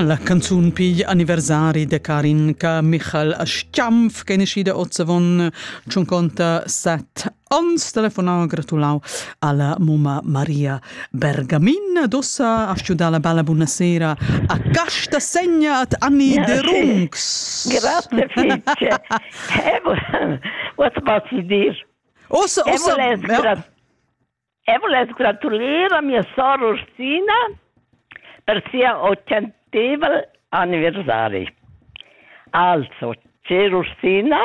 La canzun pigl anniversari da Karin ca Michal Aschamf ch'è naschida ozzavon tschun conta set ans telefonau gratulau alla mumma Maria Bergamin dossa a studar la bella buonasera a casta segna at Anni de Runx. Grazie fice. What about you dear? Ossa ossa Eu vuless gratulir a mia sora Ursina per sia occenteval anniversari. Also, cher Ursina,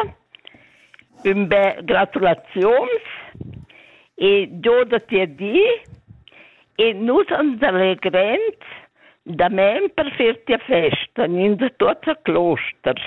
ün be gratulaziuns e giodati a di e nus ans allegrend da men per fer tia festa gnins tuots a closters.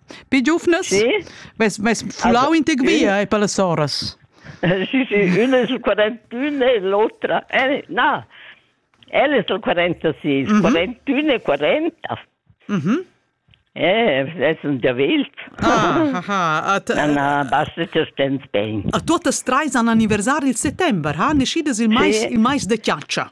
Pi giuvnas? Sì. Mes, mes fulau in tec via e per las soras. Sì, sì, una è sul 41 e l'altra... Eh, no, ella è sul 46, mm -hmm. 41 e 40. Mm -hmm. Eh, es un diavelt. Ah, ah, ah. Na, na, basta che stens bene. A tutte e tre sono anniversari il settembre, ha? Nescides il mais, sì. il mais de chiaccia.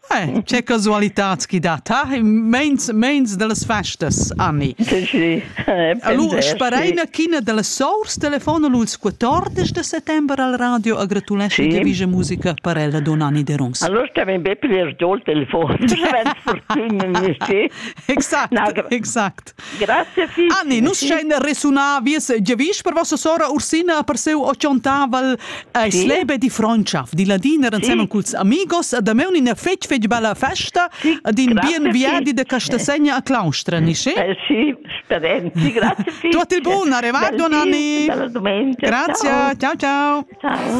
Eh, c'è casualità chi dà ta, meins, meins dallas festas, Anni. Sì, eh, allora, spareina china dalla sors telefon als 14 de settembre al radio a gratulesce sì. di musica per ella Don Anni de Runs. Allora stiamo ben per il telefon, fortuna, nicht? Exakt, no, exakt. Grazie Fifi. Anni, nus schein resunar vies giavisch per vossa sora Ursina per seu ochontaval a Slebe di Frontschaft, di ladiner ensemen culs amigos, da me una fetg fetg bella festa, din bien viadi de Castasegna a Claustra, nishi? Eh, sì, speren. Sì, grazie Fifi. Tutto il buon, arrivato Nanni. Bella domenica. Grazie, ciao ciao. Ciao.